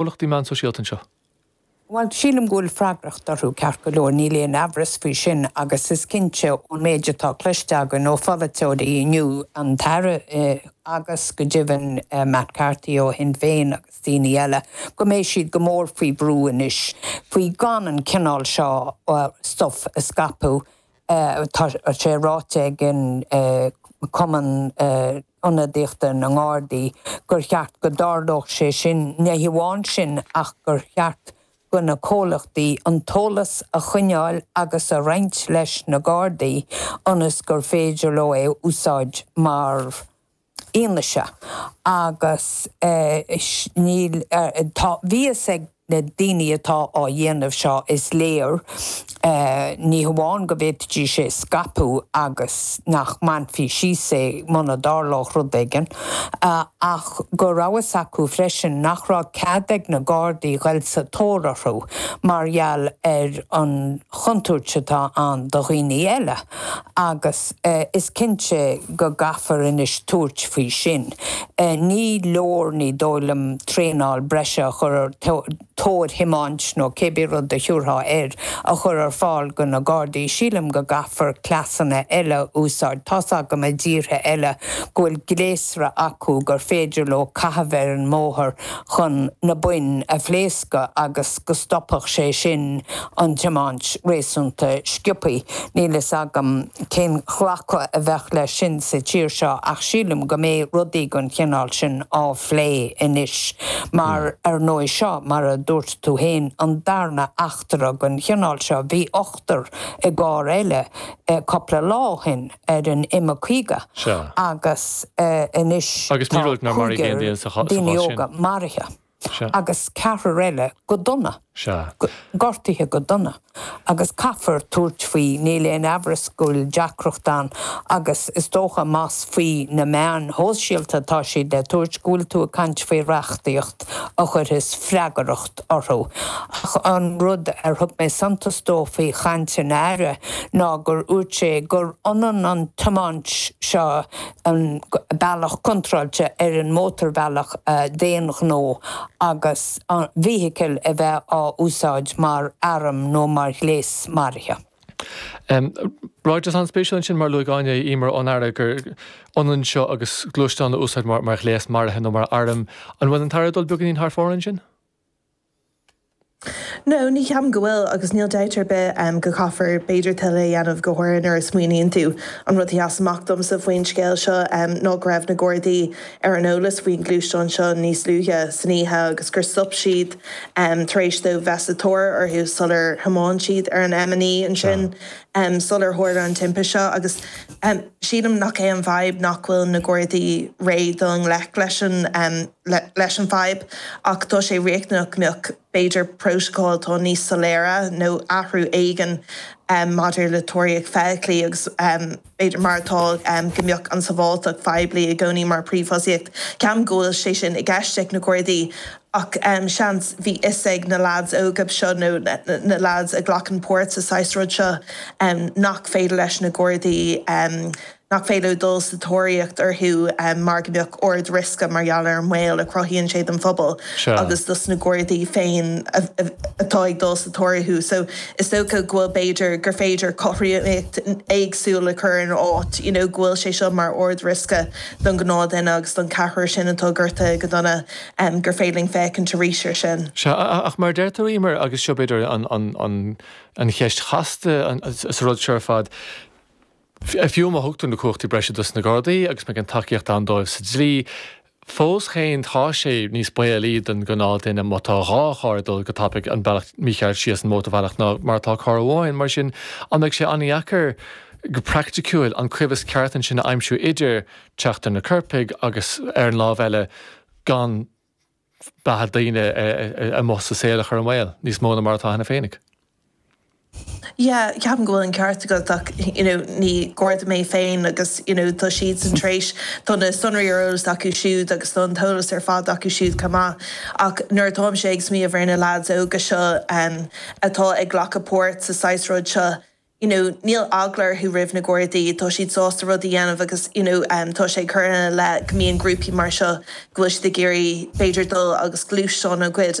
Comhlachtaí meán sóisialta seo. Bhuel, sílim go bhfuil freagracht orthu, ceart go leor, níl aon amhras faoi sin, agus is cinnte ón méid atá cloiste againn ó pholaiteoirí inniu, an tAire agus go deimhin Matt Carthy ó Shinn Féin agus daoine eile, go mbeidh siad go mór faoi bhrú anois faoi gan an cineál seo stuif a scaipeadh Tá sé ráite ag Cumann Ionadaíochta na nGardaí gur cheart go dtarlódh sé sin, ní hamháin sin ach gur cheart go na comhlachtaí an t-eolas a choinneáil agus a roinnt leis na Gardaí ionas gur féidir leo é a úsáid mar fhianaise agus níl, tá fhios ag na daoine atá á dhéanamh seo is léir ní hamháin go bhféadfaidís é a scaipeadh agus nach mbainfí síos é muna dtarlódh rud éigin ach go raibh fhios acu freisin nach raibh cead ag na Gardaí ghoil sa tóir orthu mar gheall ar an chontúirt atá ann do dhaoine eile agus Is cinnte go gcaithfear anois tabhairt faoi sin. Ní leor, ní dóigh liom, traenáil breise a chur ar thóir thiomáint nó cé bith rud a thiúrfá air a chur ar fáil do na Gardaí. Sílim go gcaithfear cleasanna eile a úsáid. Tá's agam i dtíortha eile go bhfuil gléasra acu gur féidir leo caitheamh ar an mbóthar chun na boinn a phléascadh agus. go stopfadh sé sin an tiomáint réasúnta sciopthaí. Níl fhios agam cén glacadh a bheadh leis sin sa tír seo ach sílim go mbeidh rudaí den chineál sin á phlé anois mar ar ndóigh seo mar a dúirt tú féin an darna eachtra den chineál seo. Bhí ochtar i gcarr eile cúpla lá ó shin ar an M50 agus anois tá cúigear daoine óga maraithe. agus ceathrar eile go dona. gortaithe go dona. Agus caithfear tabhairt faoi, níl aon amhras go bhfuil deacracht ann agus is dócha más faoi na meáin shóisialta atá siad le tabhairt go bhfuil tú ag caint faoi reachtaíocht a chuirfeas freagracht orthu. Ach an rud ar thug mé suntas dó faoi chaint an Aire ná gur úirt sé gur ionann an tiomáint seo an bealach contráilte ar an mótarbhealach d'aon ghnó agus an fheithicil a bheith á úsáid mar arm nó mar ghléas maraithe. Ráiteas an-spéisiúil ansin mar a luaigh Áine, a Íomhair, ón Aire gur ionann seo agus gluaisteán a úsáid mar ghléas maraithe nó mar arm. An bhfuil an tAire ag dul beagainín thar fóir ansin? No, ní cheapaim go bhfuil agus níl dabht ar bith go gcaithfear b'fhéidir tuilleadh a dhéanamh, go háirithe nuair a smaoiníonn tú, an rud a sheas amach domsa faoin scéal seo ná go raibh na Gardaí ar an eolas faoin ghluaisteán seo níos luaithe san oíche agus gur stop siad tar éis dóibh bheith sa tóir orthu sular thiomáin siad ar an M9 ansin sular tharla an timpiste seo agus Sílim nach é an fadhb nach bhfuil na Gardaí réidh le dul i ngleic leis an leis an bhfadhb ach tá sé riachtanach go mbeadh b'fhéidir prótacail atá níos soiléire nó athrú éigin maidir le tóraíocht feithiclí agus b'fhéidir mar atá go mbeadh an tsábháilteacht phoiblí i gcónaí mar phríomhthosaíocht. Ceapaim go bhfuil sé sin i gceist ag na Gardaí. ach seans bhí fhios ag na leaids óga seo nó na leaids a ghlacann páirt sa saghas rud seo nach féidir leis na gardaí, nach féidir leo dul sa tóraíocht orthu mar go mbeadh ard riosca mar gheall ar an mbaol a chruthaíonn sé don phobal agus dos na gardaí féin atá ag dul sa tóir orthu. So is dócha go bhfuil b'fhéidir gur féidir cothromaíocht éagsúil a chur ina áit, you know go bhfuil sé seo mar ard riosca don gnáth duine agus don ceathrar sin atá gortaithe go dona, gur féidir linn féachaint arís ar sin. Sea, ach mar a deir tú, Emer, agus seo b'fhéidir an cheist chasta sa rud seo ar fad, fiú má thugtar na cumhachtaí breise dos na Gardaí agus má tá an tacaíocht ann dóibh sa dlí, fós féin tá sé níos baolaí don ghnáth duine má tá dhá charr ag dul go tapaidh an bealach mícheart síos an mótarbhealach ná mar atá carr amháin. Mar sin, an mbeidh sé an-dheacair go praicticiúil an coimheas ceart ansin a aimsiú idir, teacht ar na coirpigh agus ar an lámh eile gan beatha daoine amuigh sa saol a chur i mbaol níos mó ná mar atá cheana féinig. Yeah ceapaim go bhfuil an ceart agat ach you know ní Garda mé féin agus you know tá siadsan tar éis, tá na sonraí ar eolas acu siúd agus tá an t-eolas ar fad acu siúd chomh maith ach nuair atáimse ag smaoineamh ar na lads óga seo atá ag glacadh páirt sa saghas rud seo, you know níl eagla orthu roimh na Gardaí, tá siad sásta rudaí a dhéanamh agus you know tá sé ag cur ina leith go mbíonn grúpaí mar seo go bhfuil siad ag iarraidh b'fhéidir dul agus gluaisteáin a ghoid,